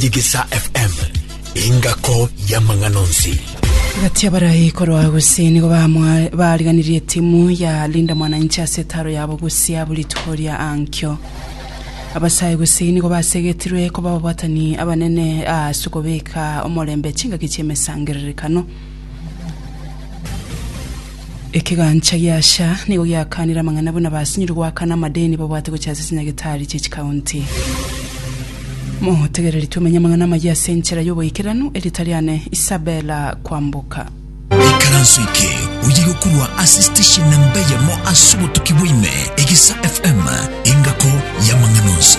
Digisa FM, engako y'amang'ana onsi. Gati abarai korwa gose nigo bamwa- bariganirie etimu ya Linda Mwananchi ase etaro yabo gose abo rituko ria ankio. Abasae gose nigo basegetirwe koba ababatani abanene ase okobeka omorembe chingaki chi'emesangererekano. Ekegancha gia Asha nigo giakanire amang'ana buna basinyorwe goakana amadeni babwate gochia ase chinyagetari chie chikaunti. Motegereri tomenye amang'ana amayia ase enchera y'oboikeranu, erita riane Isabella Kwamboka. Ikaranso eke oye gokorwa ase station namba eyemo ase obotuki bwa ime, Egisa FM, engako y'amang'ana onsi.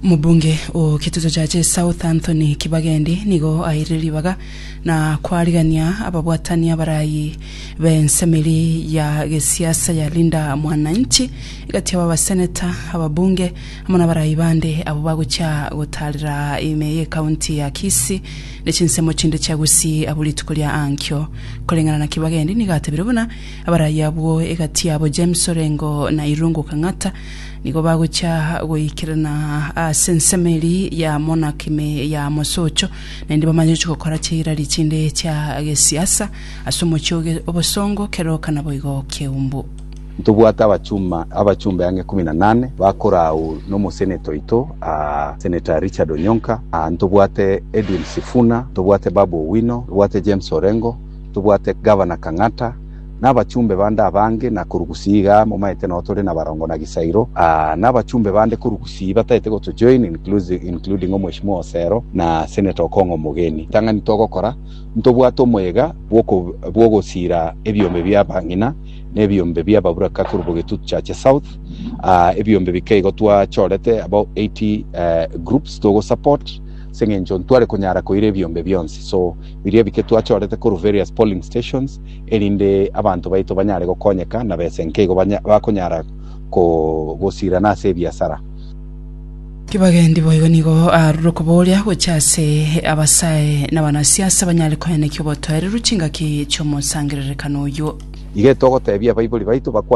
Omobunge o getuto gia South Anthony Kibagendi nigo aeire ribaga na kwarigania ababwatani abarayi b'ensemeri ya gesiasa ya Linda Mwananchi egati yabo abaseneta, ababunge amo n'abarayi bande abwo bagochia gotaarera ime y'ekaunti ya Kisii ne chinsemo chinde chia Gusii abwo rituko ria ankio. Koreng'ana na Kibagendi nigo atebire buna abarayi abwo egati yabo James Orengo na Irungu Kang'ata Nigo bagochia goikerana ase ensemo eria ya monarchy ime ya mosocho, naende bamanye chigokora chi'irari chinde chia gesiasa ase omochie oge obosongo, keroka naboigo keumbu. Ntobwate abachuma abachumbe ang'e kumi na nane bakorau nomoseneta oito aa Senator Richard Onyonka aa ntobwate Edwin Sifuna ntobwate Babu Owino ntobwate James Orengo ntobwate Governor Kang'ata na abachumbe bande abange, na korugusia iga momaete nao tore na barongo na gisairo, aa, na abachumbe bande korugusia bataete gotojoin, inclusi- including Omweshimiwa Osero na Senator Okong'o Omogeni. Ritang'ani togokora, ntobwate omoyega bw'oko- bw'ogosiira ebiombe bia abang'ina na ebiombe bia ababuraka korwa Bogetutu Chache South, aa, ebiombe bike igo twachorete abao 80 eh, groups togosupport, ase eng'encho ntware konyara koira ebiombe bionsi. So, biria bike twachorete korwa various polling stations, erinde abanto baito banyare gokonyeka na bese nkeigo bakonyara gosirana ase ebiasara. Kibagendi boigo nigo aarure okobooria gochia ase abasae na abanasiasa banyare koenekia obotoereru chingaki chi'omosangererekano oyio. Igete ogotebia abaibori baito bakwane.